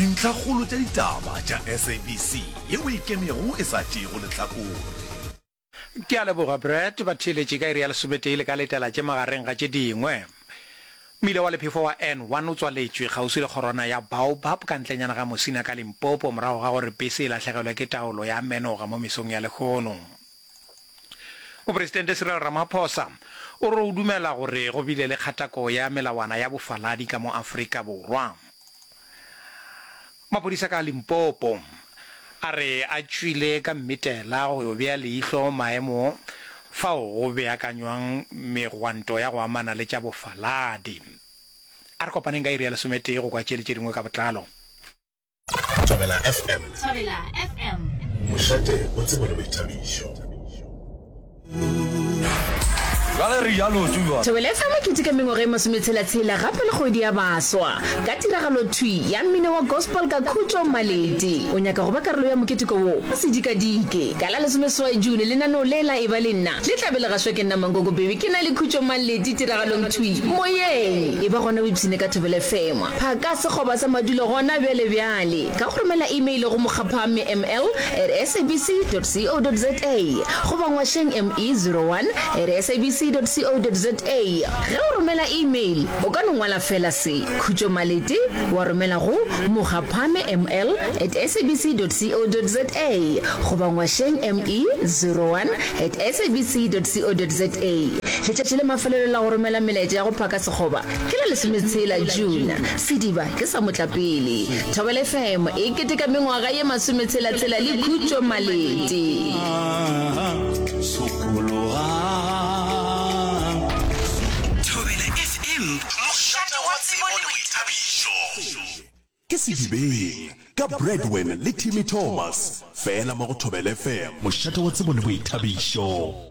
Dintlhakgolo tša ditaba tša SABC ye o e kemego e sa tšeego lehlakore. Ke a leboga, Brett. Ba theeletše ka iri ya lesometee le ka letela tše magareng ga tše dingwe. Mmila wa lephefo wa N one o tswaletšwe kgauswi le kgorwana ya Baobab ka ntlenyana ga Mosina ka Limpopo morago ga gore pese e lahlegelwe ke taolo ya menoga mo mesong ya lehono. Mopresidente Cyril Ramaphosa o re o dumela gore go bile le kgatako ya melawana ya bofaladi ka mo Afrika Borwa. Maphodisa ka Limpopo a re a tšwile ka mmitela go yo bea leihlo maemo fao go beakanywang megwanto ya go amana le tša bofaladi. A re kopaneng ka iri ya lesometee go kwa tše le tše dingwe ka botlalo. Thobela FM. Thobela FM. Mošate o tsebo le boithabišo. Thobela FM e keteka mengwaga e masometshela-tshela gape le kgwedi ya baswa ka tiragalo thwi ya mmino wa gospel ka khutšo maledi o nyaka go ba karolo ya moketeko wo o sedikadike ka la lesomeseswai june lenaneo le la e ba le nna le tlabe le gašwa ke nna mankoko baby ke na le khutšo maledi tiragalong thwi moyeng e ba gona o ipshine ka thobela fm Phaka sekgoba sa madulo gona bjale bjale ka go romela imeile go mokgaphamme ml at sabc dot co dot za goba ngwašeng ME zero one at sabc dot co dot za. Ge o romela imeil, o ka no ngwala feela se, Khutšo Malete, wa romela go mokgaphamme ml at sabc dot co dot za goba ngwašeng ME zero one at sabc dot co dot za. Letšatši la mafelelo la go romela melaetša ya go phaka sekgoba Ke la lesometshela June, sediba ke sa motlapele. Thobela FM e keteka mengwaga ye masometshela-tshela le khutšo Malete. Thobela FM, mošate wa tsebo le boithabišo. Ke Sedibeng, ka Bradwen le Timmy Thomas, fela mo go Thobela FM. Mošate wa tsebo le boithabišo.